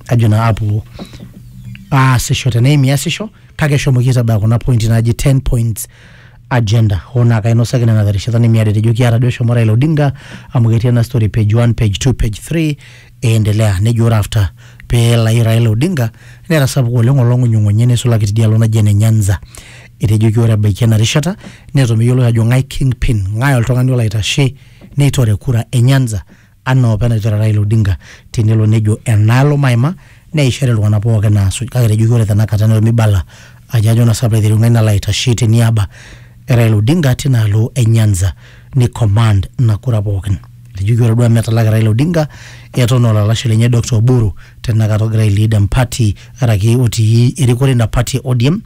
ajo naa apuo aasisho teneim iasisho kake eshomoki aitabaya kuna pointi naaji 10 points agenda hoo naa kainosaki nena terishata nemiata etejo kiata duo eshomo Raila Odinga amu ketii ena story page 1 page 2 page 3 eendelea nejo ore after pee elayu Raila Odinga netasapuka oleng olong'unyung'unyi neisulaki tidialo naji ene Nyanza etejoki ore ebaiki ena rishata neton meyioloi ajo ng'ae kingpin ng'ae oltung'ani olo aitashe neitore kura e Nyanza anaa opa enatejo Raila Odinga tenelo nejo enaalo maima neishori iltung'ana pooki naasuj kake etejoki ore tenakata neton meibala ajo ajo naa sababu aiteru ng'ae nalo aitashe teniaba e Raila Odinga tinaalo e Nyanza ni command ina kura pookin. Etejoki ore duo amu etalaki Raila Odinga eton aa olalashe lenye Doctor Oburu tenakata ogira ai lead empati araki otii erikore ina pati e ODM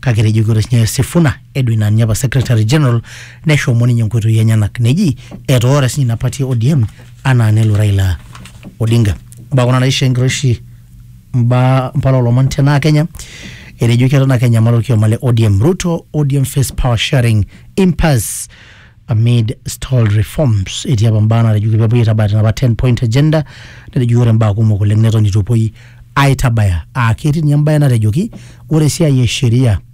kake etejoki ore sininye Sifuna Edwin Anya apa secretary general neshomo ninye nkoitoi enyenak neji etoora sinye ina party e ODM anaa nelo Raila Odinga mbaa kuna naisho enkiroshi mbaa mpala olomon tenaa Kenya etejoki eton ake enyamal orkioma le ODM Ruto ODM face power sharing impasse amid stalled reforms etii apa mbaa natejoki pepuoi aitabaya tenapa 10 point agenda netejoki ore mbaa kumok oleng neton itu epuoi aitabaya aa ketii ninye embae natejoki ore esiai e sheria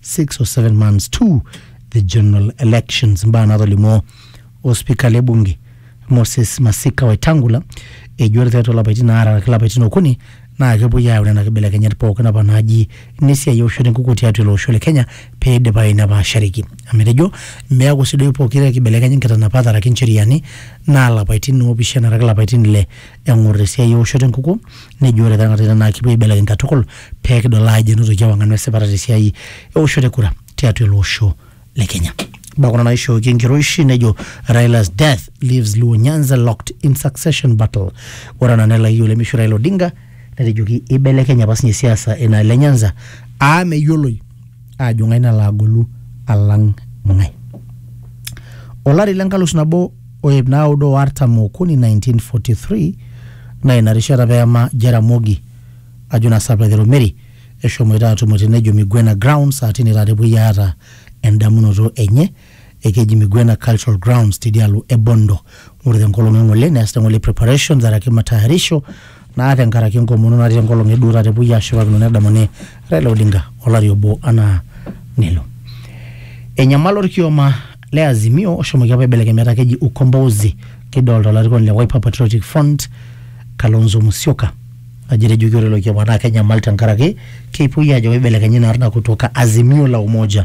six or seven months to the general elections mba nato limo ospika le bunge moses masika wetangula ejo ore tiatua lapaitin aare araki lapaitin okuni naa kepuoi ayau nena kibelekenyat pookin apa naaji nesiai eoshoto enkukuo tiatua ilo osho le kenya pee eidipayu nepaashareki amu etejo meeku sii duo pokira ekibelekenya nkitanapat araki ncheriani naa lapaitin oopishana araki lapaitin ile eng'or esiai eoshoto enkukuo nejo ore tenakata ina naa kipuo aibelekeny katukul pee kidol aajo enotoki ewang'an wesipata tesiai eoshoto e kura tiatua ele osho le Kenya. Mbaa kuna naishooki enkiroishi nejo Raila's death leaves Luo Nyanza locked in succession battle. Ore ena nelayu olemeishu Raila Odinga netejoki eibelekenye apa sinye siasa enaalo e Nyanza aa meyioloi aajo ng'ae nalo agolu alang ng'ae. Olari le nkalus nabo o iip naaudo o artam okuni 1943 naa ina rishata peema Jaramogi ajo naa saa Petero Mary eshomoita aatumo te nejo Migwena Grounds aa tine taata epuoi aata endamunoto enye ekeji Migwena Cultural Grounds tidialo e Bondo. Ore tenkolong e ng'ole neasita ng'ole preparations araki matayarisho naa tenkaraki enkomono natii enkolong e duo taata epuoi aashipakino nedamuni Raila Odinga olari obo anaa nelo. Enyamala olkioma le Azimio oshomoki apa aibelekeny metaa keji Ukombozi kidolta olarikoni le Wiper Patriotic Front Kalonzo Musyoka ajo etejoki ore ilo kioma naa kenyamal tenkaraki kepuoi aajo keibelekenyi ina arna kutoka Azimio la Umoja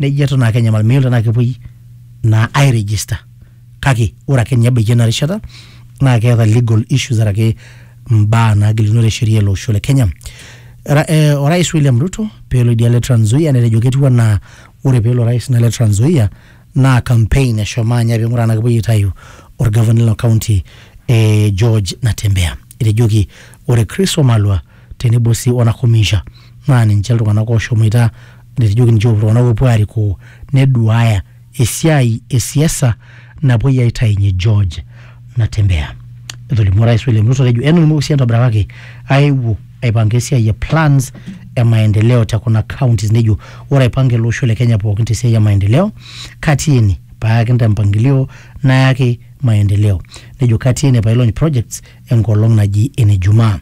neji eton ake enyamal meyiolo tenaa kepuoi naa ai register kake ore ake ninye ebaiki ena rishata naa keeta legal issues araki mbaa naagilunore sheria ele osho le Kenya. Ra, eh, orais William Ruto peelo idia le Trans Nzoia netejo ketiu anaa ore peelo orais ina le Trans Nzoia naa campaign eshomo anya ping'uraa tenaa kepuoi aitayu orgavanai lina county eh, George Natembeya. Etejoki ore Chris Wamalwa tenebo sii o Nakhomicha naa ninche iltung'anak ooshomoita netejoki ninche oopuo iltung'anak oopuo aarikoo neduaaya esiai e siasa napuoi aitainye George Natembeya. Etolimuo Orais William Ruto atejo enotokinoki sii entobirata kake aewuo aipanga esiai e plans e maendeleo te kuna counties nejo ore aipanga ele osho le Kenya pookin te siai e maendeleo katii ene paakin te mpangilio nayaki maendeleo. Nejo katii ene paailony projects enkolong naji ene Jumaa.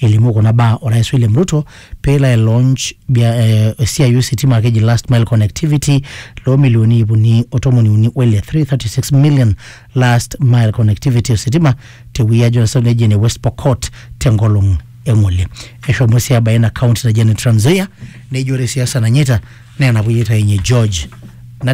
Elimu kuna baa Orais William Ruto pelo ai launch bia, eh, esiai ositima keji last mile connectivity loo milioni iip uni o tomoni uni o ile 336 million last mile connectivity ositima te Wiyia Johnson region e West Pokot te nkolong e ngole. Eshomo sii abaya ina county naji ene Trans Nzoia nejo ore siasa nanyaita naa enapuyitai enye George Nate